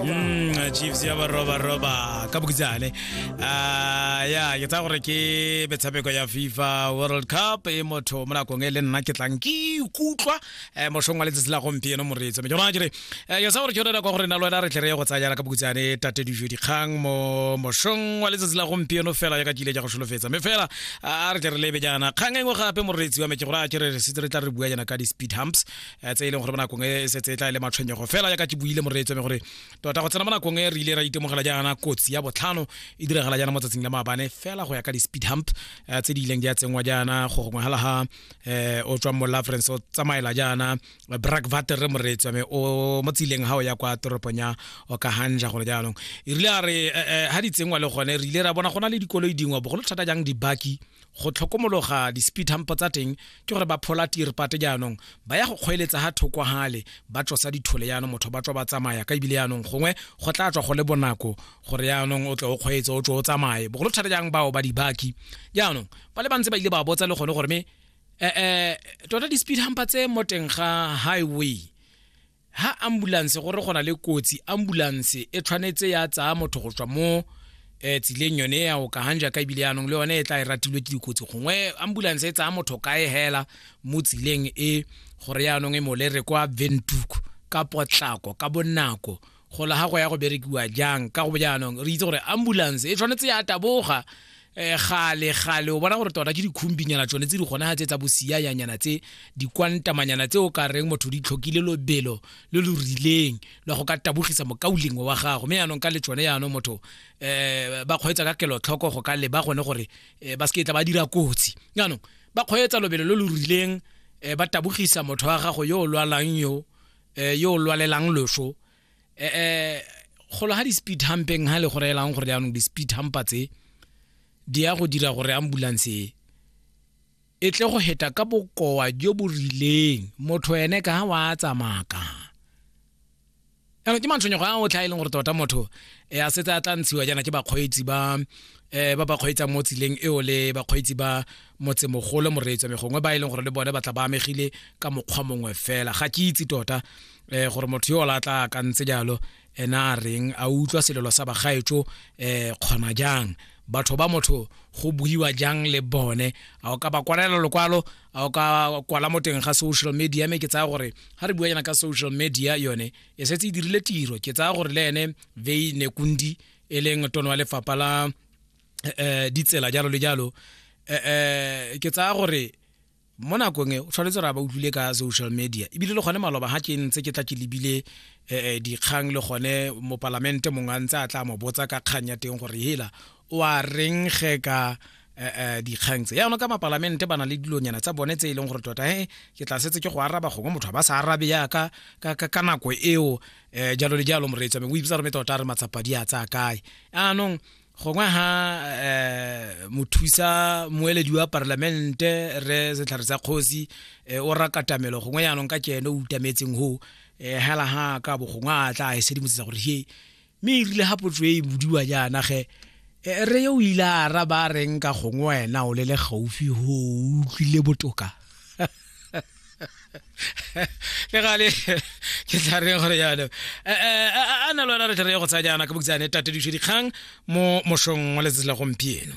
Mm, chiefs ya barobaroba ka bokitsane Ah, ya ke tsaya gore ke metshameko ya fifa world cup e motho mo nakong e le nna ke tlang ke ikutlwa eh, mošong wa letsatsi la gompieno moreetso me ke rona kere eh, ke tsaya gore ke yone nako ya gore na le wena re tle re ye go tsaya jana ka bokitsane tate dijo dikgang mo mošong wa letsatsi la gompieno fela yaka kile ja go solofetsa me fela ah, re tle re lebe jana kgang e nngwe gape moreetsi wa me ke gore a kere re setse re tla re bua jana ka di-speed humps eh, tse e leng gore mo nakong e, e setse e tla e le matshwenyego fela jaaka ke buile moreetso mme gore tota go tsena mo nakong e re ile ra itemogela jaana kotsi ya botlhano e diragala jaana mo tsatsing la maabane fela go ya ka di-speed hump eh, tse di ileng di a tsenngwa jaana go gongwe hala ga um o tswang mo lafrance o tsamaela jaana brack vater re moreetso mme o mo tsileng ga o ya kwa toropong ya okahanja gone jaanong e rile a re ga di tsengwa le gone re ile ra bona go na le dikoloi dingwe bogolo thata jang dibaki go tlhokomologa di-speed hump tsa teng ke gore ba phola tirpate jaanong ba ya go kgweeletsa ga thoko gale ba tlosa dithole jaanong motho ba tswa ba tsamaya ka ebile jaanong gongwe go tla tswa go le bonako gore jaanong o tle o kgweetse o tswe o tsamaye bogolo thata jang bao ba dibaki jaanong ba le bantse ba ile ba botsa le gone gore me um tota di-speed humpa tse mo teng ga highway ha ambulanse gore go na le kotsi ambulanse e tshwanetse ya tsaya motho go tswa mo eh, tsileng yone ya o kagang jaaka ebile yaanong le yone e tla e ratilwe ke dikotsi gongwe ambulanse e tsaya motho kae hela mo tsileng e gore yaanong e molere kwa ventuku ka potlako ka bonako go la gago ya go berekiwa jang ka go jaanong re itse gore ambulance e tshwanetse ya taboga um gale gale o bona gore tota ke dikhumbinyana tsone tse di gona tse tsa bosiayanyana tse dikwantamanyana tse o ka reng motho di tlhokile lobelo le lo rileng le go ka tabogisa mokaulengwe wa gago mme yaanong ka le tsone yaanong motho um ba kgweetsa ka kelotlhoko go ka leba gone gore um ba se ke tla ba dira kotsi yaanong ba kgweetsa lobelo lo lo rileng um ba tabogisa motho wa gago yo o lwalang yo um yo o lwalelang loso eh, eh golo ga di-speed humpeng ga le go reelang gore jaanong di-speed humpa tse di ya go dira gore ambulance e e tle go heta ka bokowa jo bo rileng motho ene ka ga wa tsamaka jaanong ke matshwenyego a otlha e leng gore tota motho e a setse a tla ntshiwa jaana ke bakgweetsi ba um ba ba kgweetsang mo tseleng eo le bakgweetsi ba motsemogolo moreetswa megongwe ba e leng gore le bone ba tla ba amegile ka mokgwa mongwe fela ga ke itse tota eh gore motho yo o la tla ka ntse jalo ena a reng a utlwa selelo sa bagaetso eh kgona jang batho ba motho go buiwa jang le bone a o ka ba kwalela lokwalo a o ka kwala mo teng ga social media me ke tsaya gore ga re bua yana ka social media yone e setse e dirile tiro ke tsaya gore le ene vei nekundi e leng tono wa lefapha la eh, eh, ditsela jalo le jalo eh, eh, ke tsaya gore mo nakong e o tshwanetse ra ba utlwile ka social media ebile le gone maloba ga ke ntse ke tla ke lebile um dikgang le gone mopalamente mongwe a ntse a tla mo botsa ka kgang ya teng gore hela o a reng ge ka um dikgang tse yaanong ka mapalamente ba na le dilonyana tsa bone tse e leng gore tota he ke tla setse ke go araba gongwe motho a ba sa arabe yaka ka nako eo um jalo le jalo moreetswa me o ibitsa rome tota a re matsapadi a tsaya kae yaanong gongwe ha um mothusa moeledi wa parlamente re setlhare sa kgosi eh, o rakatamelo gongwe yaanong ka kene o utametseng ho um eh, hela ha ka bo gongwe a tla e sedimosetsa gore he mme e rile ga potso e e bodiwa jaana ge Eh, re o ile a araba reng ka gongwe wena o le le gaufi go utlwile botoka le gale ke tla reng gore yalo eh, eh, eh, a na lona re tle re ye go tsa jaana ka boksane tatedišo dikgang mo mošong wa letsatsi la gompieno